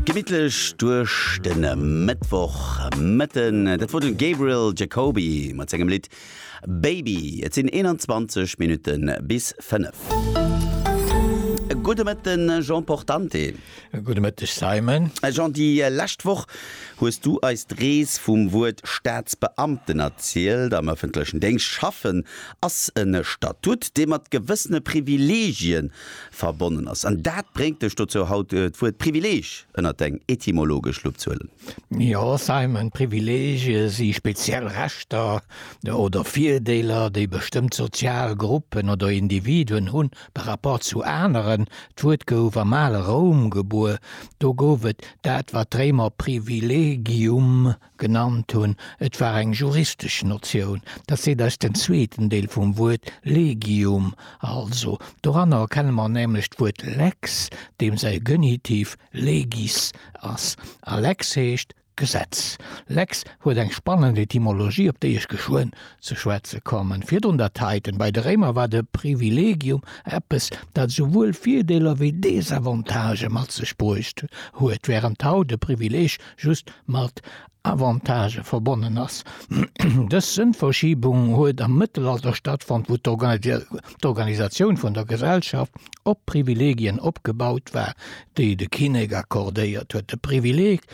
Gemittlech duerch de Mëttwoch Mëtten, dat wor de Gabriel Jacoby mat sengem Lidd Baby. Et sinn 21 Minutten bis 5. Gudde Mëtten, Jean Portante. Gudde Mëtteg, Simon. Jean, déi lescht Woch hues du eis d'Rees vum Wuert Staatsbeamten erzielt. Am ëffentlechen Déngscht schaffen ass e Statut, dee mat gewëssene Privilegien verbonnen ass. An dat bréngt dech dozou haut d'Wuert Privileeg ënnert deng etymologesch Lupp ze huelen. Jo Simon, Privileegie si speziell Rechter oder Virdeeler, déi bestëmmt sozial Gruppen oder Individuen hunn par rapport zu aneren. D'Wuert gouf am ale Roum gebuer, do gouf et dat wat d'Réimer privilegium Genannt hunn. Et war eng juristesch Notioun. Dat seet eis den zweeten Deel vum Wuert legium. Also, doranner erkenne mer nämlech d'Wuert lex, deem säi Genitiv legis ass. A lex heescht Gesetz. Lex huet eng spannend Etymologie, op déi ech geschwënn ze schwätze kommen. Virdrun dat heiten. Bei de Réimer war de privilegium eppes, dat souwuel Virdeeler wéi Desavantagë mat sech bruecht huet, wärend haut e Privileeg just mat Avantagë verbonnen ass. Dës Sënnverschiebung huet am Mëttelalter stattfonnt, wou d'Organisatioun vun der Gesellschaft op Privilegien opgebaut war, déi de Kinnek accordéiert huet. De Privileg,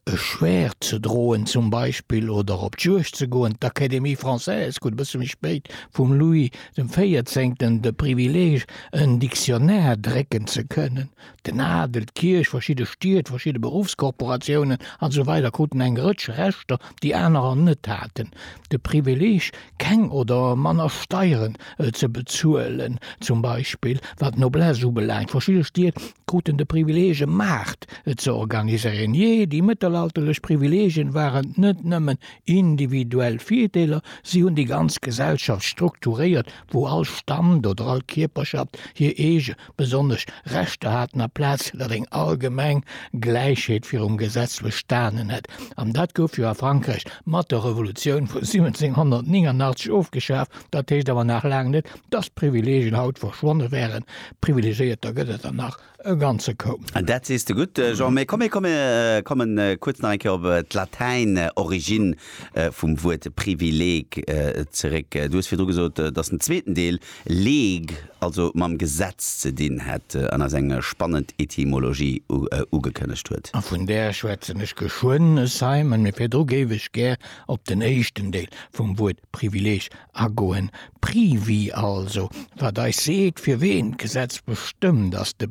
e Schwäert ze droen zum Beispill oder op d'Juegd ze goen, d'Académie française krut e bësse méi spéit vum Louis dem Véierzéngten de Privileg, en Dictionnaire drécken ze kënnen. Den Adel, d'Kierch, verschidde Stied, verschidde Beruffskorporatiounen an esou weider kruten eng Rëtsch Rechter, déi anerer net haten. De Privileeg, keng oder manner Steieren ze bezuelen zum Beispill, wat d'Noblesse ubelaangt. Verschidde Stied kruten de Privileeg, e Maart ze organiséieren. Jee, déi mëttelalterlech Privileegien waren net nëmmen individuell Virdeeler, si hunn déi ganz Gesellschaft strukturéiert, wou all Stand oder all Kierperschaft hir eege besonnesch Rechter haten a Plaz dat eng allgemeng Gläichheet virum Gesetz bestanen hätt. An dat gouf jo a Frankräich mat der Revolutioun vu 1789 ofgeschaf. Dat heescht awer nach laang net, dass d'Privilegien haut verschwonne wären. Privilegéierter gëtt et der nach e ganze Koup. Dat sees de gutt, Jean. Mee komm, mir kommen kuerz nach eng Kéier op d'Latäin Origine vum Wuert Privileg zeréck. Du hues virdru gesot, dass den zweeten Deel League, also mam Gesetz ze dinn hätt an eis eng spannend Etymologie ugekënnegt huet. A vun där schwätzen ech geschwënn, es sei men, mee virdru géif ech gär op den éischten Deel vum Wuert Privileeg agoen, Privi also, wat eis seet, fir ween d'Gesetz bestëmmt, ass de.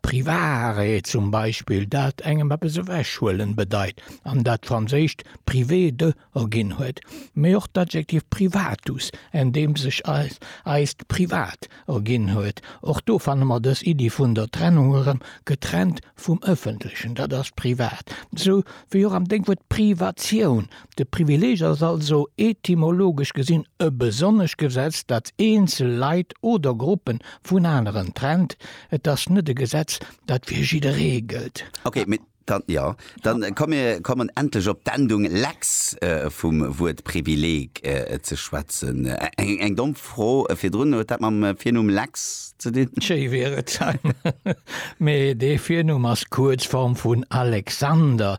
Privaarrêt zum Beispill, dat engem eppes ewechhuelen bedeit an dat franséischt privé de erginn huet, mee och d'Adjektiv privatus, en deem sech eist Privat erginn huet. Och do fanne mer dës Iddi vun der Trennung erëm, getrennt vum Ëffentlechen, dat ass privat. Esou wéi och am Dénkwuert Privatioun, De Privileeg ass also etymologesch gesinn e besonnescht Gesetz, dat eenzel Leit oder Gruppen vun aneren trennt. Et ass net e Gesetz, dat fir jidderee gëllt. Ok, mee dann, jo, dann komm mir kommen endlech op d'Endung lex vum Wuert Privileeg ze schwätzen. Eng domm Fro virdrun, huet dat mam Virnumm Lex ze dinn? Schéi wier et, mee dee Virnumm ass d'Kuerzform vun Alexander,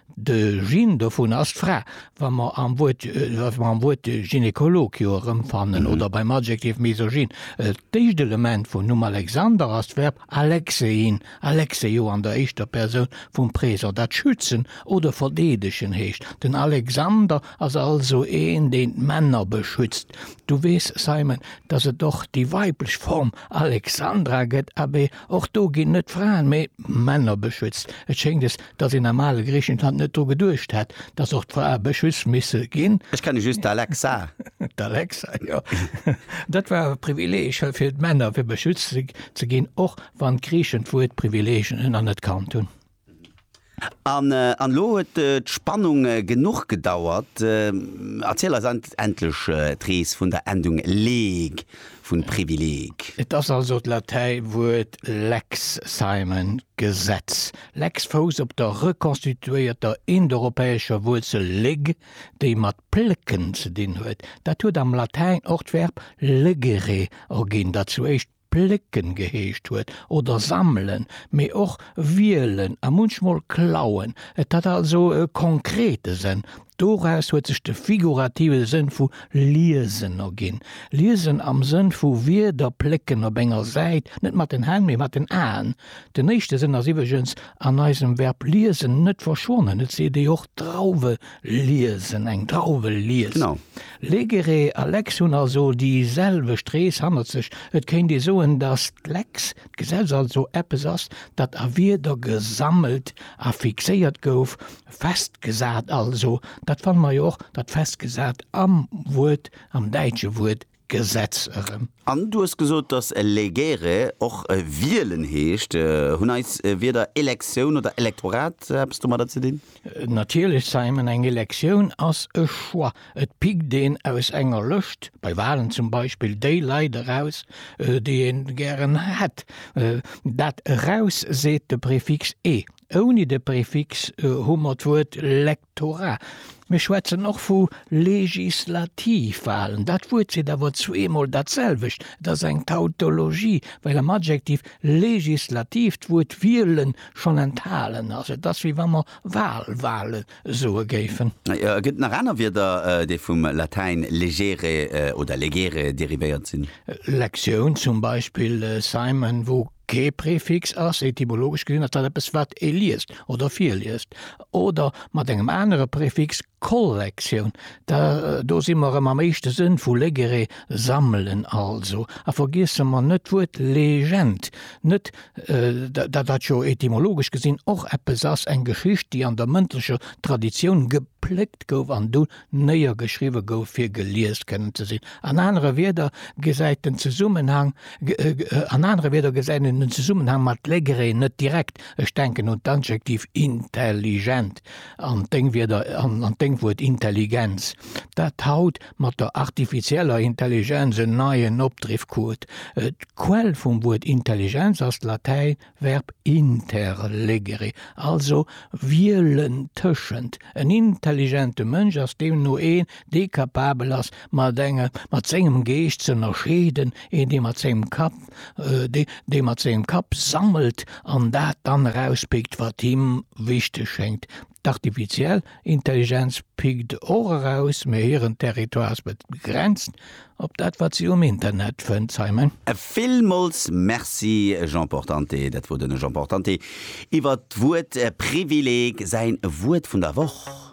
De Gene dovun ass d'Fra, wa mer am Wuert, wa mer am Wuert Gynekolog jo erëmfannen oder beim Adjektiv Misogyn. D'éischt Element vum Numm Alexander ass d'Verb alexein, alexeio an der éischter Persoun vum Présent, dat schützen oder verdeedegen heescht. Den Alexander ass also een, deen d'Männer beschützt. Du weess, Simon, dass et och déi weiblech Form Alexandra gëtt. Abee, och do ginn net d'Fraen, mee d'Männer beschützt. Et schéngt, es Dass een am ale Griichenland net dru geduecht hätt, dass och d'Frae beschützt misse ginn. Ech kenne just d'Alexa. D'Alexa, jo. Dat war e Privileeg fir d'Männer, fir beschützt ze ginn, och wann d'Griichen d'Wuert Privileeg anerkannt hunn. An elo huet d'Spannung genuch gedauert. Erziel eis endlech d'Rees vun der Endung leg vun Privileg. Et ass also d'Latäiwuert lex, Simon, Gesetz. Lex Fous op der rekonstituéierter indoeuropäescher Wuerzel leg, déi mat plécken ze dinn huet. Dat huet am Latäin och d'Verb legere erginn, dat zu éischt plécken geheescht huet, oder sammelen, mee och wielen a munchmol klauen. Et hat also e konkrete Sënn. Doraus huet sech de figurative Sënn vu liesen erginn, liesen am Sënn vu Wierder plécken op enger Säit, net mat den Hänn, mee mat den Aen, Den éischte Sënn ass iwweregens an eisem Verb liesen net verschwonnen, et seet ee och Drauwe liesen, eng Drauwe liest. Legere a Lex hunn also déi selwecht Rees hannert sech. Et kéint ee soen, datt d'Lex, d'Gesetz, also eppes ass, dat a Wierder gesammelt a fixéiert gouf, festgesat also. Dat fanne mer jo och, dat festgesat am Wuert, am däitsche Wuert Gesetz erëm. An du hues gesot, dass legere och wielen heescht. Hunn eis Wierder Elektioun oder Elektorat eppes domadder ze dinn? Natierlech, Simon. Eng Elektioun ass e Choix. Et pickt een aus enger Lëscht, bei Walen zum Beispill, déi Leit eraus, déi ee gären hätt. Dat eraus seet de Prefix e. Ouni de Prefix hu mer d'Wuert lek. Tora, Mir schwätzen och vu Legislativwahlen. Dat Wuert seet awer zweemol datselwecht. Et ass eng Tautologie, well am Adjektiv legislativ d'Wuert wielen schonn enthalen ass. Et ass, wéi wa mer Wahlwahle soe géifen. Et gëtt nach aner Wierder, déi vum Latäin legere oder legere derivéiert sinn. Lektioun zum Beispill, Simon, wou Kee Prefix ass, etymologesch gesinn, ass dat eppes, wat ee liest oder virliest, oder mat engem anere Prefix, Kollektioun, da do si mer erëm am éischte Sënn vu legere, sammelen also. A vergiesse mer net d'Wuert Legend net, dat dat jo etymologesch gesinn och eppes ass, eng Geschicht, déi an der mëndlecher Traditioun gepléckt gouf an du néiergeschriwwe gouf fir gelies kënnen ze sinn, an anere Wieder gesäit den Zesummenhang, an anere Wieder gesäit een den Zesummenhang mat legré net direkt, ech denken un d'Adjektiv intelligent an deng Wieder, an deng Wuert Intelligenz, dat haut mat der artifizieller Intelligenz en neien Opdriff krut. D'Quell vum Wuert Intelligenz ass d'Latäin Verb interlegere, also wielen tëschent. En intelligente Mënsch ass deemno een, dee kapabel ass, mat engem, mat sengem Geescht z'ënnerscheeden, een, dee mat sengem Kapp, dee, dee mat sengem Kapp sammelt an dat dann erauspickt, wat him wichteg schéngt. D'Artifiziell Intelligenz pickt och eraus, mee hiren Territoire ass begrenzt op dat wat si um Internet fënnt, Simon. Villmools Merci Jean Portante. Dat wor den Jean Portante iwwert d'Wuert Privileg, säin Wuert vun der Woch.